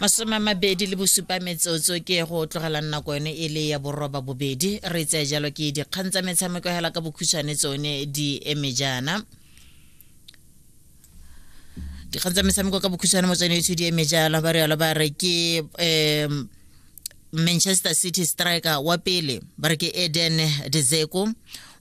masome a mabedi le bosupa metsotso ke go tlogelang nako yone e le ya boroba bobedi re tseye jalo ke dikgang tsa metshameko hela ka bokhutshwane tsone di eme jaana dikgang tsa metshameko ka bokhutshwane mo tsone etsho di eme jalo ba rialo ba re ke um manchester city striker wa pele ba re ke eden dezeko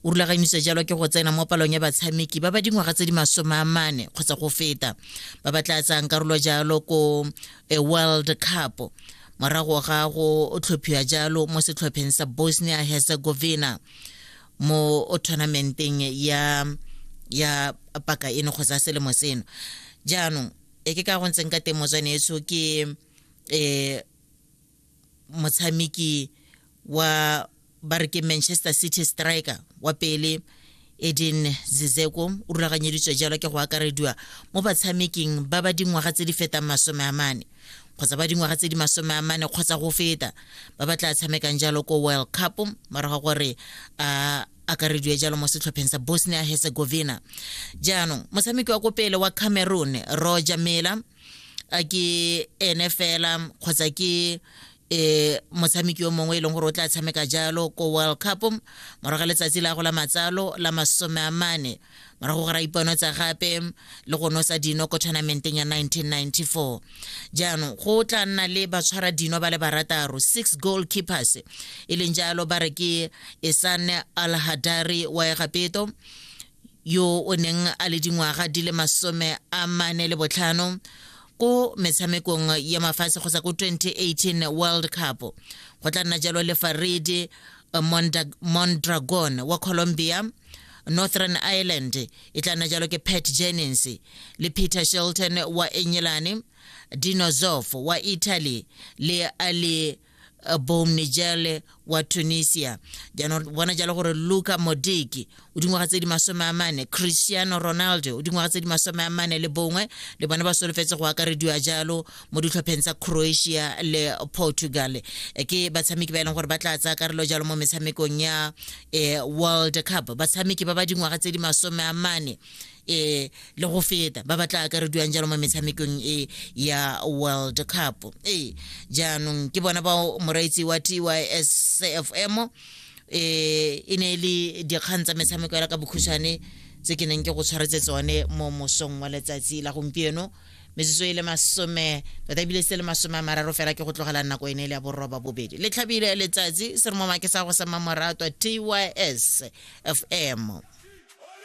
o rulaganyiswa jalo ke go tsena mo palong ya batshameki ba ba dingwaga tse di masome a mane kgotsa go feta ba ba tla tsayang karolo jalo ko eh, world cup morago ga go tlhophiwa jalo mo setlhopheng sa bosnia herzegovina mo tournamenteng ya ya paka eno kgotsa selemo seno jaanong e ke ka go ntseng ka teng motswaneetso ke um motshameki wa ba re ke manchester city striker wa pele edin zizeko o rulaganyeditswe jalo ke go akarediwa mo batshameking ba ba dingwaga tse di fetang masome a mane kgotsa ba dingwaga tse di masome a mane kgotsa go feta ba ba tla tshamekang jalo ko world cup morago gore a akarediwe jalo mo setlhopheng sa bosnia herzegovina jaanong motshameki wa ko pele wa cameroon roger mela a ke ene fela kgotsa ke eh motshameki yo mongwe e leng gore o tla tshameka jalo ko world cup morago ga letsatsi la go la matsalo la masome a mane morago ga ra ipano tsa gape le go nosa dino ko tournamenteng ya 1994 jaanong go tla nna le batshwara dino ba le barataro six goal keepers e leng jalo ba re ke esane al hadari wa egapeto yo o neng a le dingwaga di le masome a mane le botlhano ko metshamekong ya mafatshe kgotsa ko 2018 world cup go tla nna jalo le farede mondragon wa colombia northern ireland e tla nna jalo ke pat jennings le peter shelton wa enyelane dinozof wa italy le ali eh, Boum Nijele wa Tunisia. Jaanong bona jalo gore Luka Modiki o dingwaga tse di masome a mane, Cristiano Ronaldo o dingwaga tse di masome a mane le bongwe le bone ba solofetse go akarediwa jalo mo ditlhopheng tsa Croatia le Portugal. Eh, Ke batshameki ba e leng gore ba tla tsaya karolo jalo mo metshamekong ya eh, World Cup. Batshameki ba ba dingwaga tse di masome a mane eh le go feta ba batla akarediwang jalo mo metshamekong e ya world cup ee jaanong ke bona bao moraitsi wa tysfm eh e ne e le dikgang tsa metshameko ya ka bokhushane tse ke neng ke go tshwaretse tsone mo mosong wa letsatsi la gompieno metsotso e le masome tota ebile se le masome a mararo fela ke go tlogela nako e ne e le ya borroba bobedi le tlhabile letsatsi se re mo make sa go sa mamoratwa tys fm